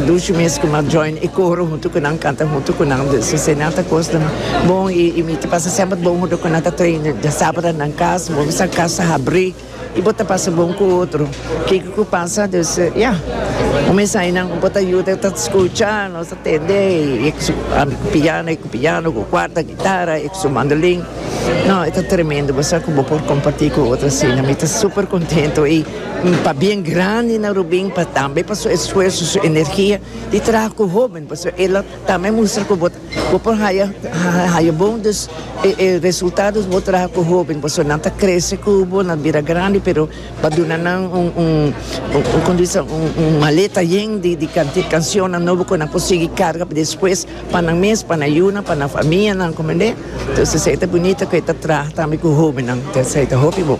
Lucio mes ku ma join e koro huntu ku nan kanta huntu ku nan dus esei nan ta kos den bon i i mi ta pasa semper bon huntu ku nan ta train dia sabado nan kas bo bisa kas ta habri i bo ta pasa bon ku otro kiko ku pasa dus ya un mes ai nan bo ta yuda ta skucha nos ta tende e ku su piano e ku piano ku kuarta gitara e ku su mandolin no e ta tremendo bo sa ku bo por komparti ku otro asina mi ta super kontento i. N ta bien grandi na Rubin pa tambe pa su esfuerso, su energia di traha cu hoben, pasobra el a tambe mustra cu bo bo por haya haya bon dus e e resultado di bo traha cu hoben, pasobra nan ta crece cu bo, nan bira grandi, pero pa duna nan un un un como dice un un maleta yen di di canti cancionnan nobo cu nan por sigui carga pa despues pa nan mes, pa nan yuna, pa nan famianan, comprende? Entonces esey ta bunito cu e ta traha tambe cu hobennan, esey ta hopi bon.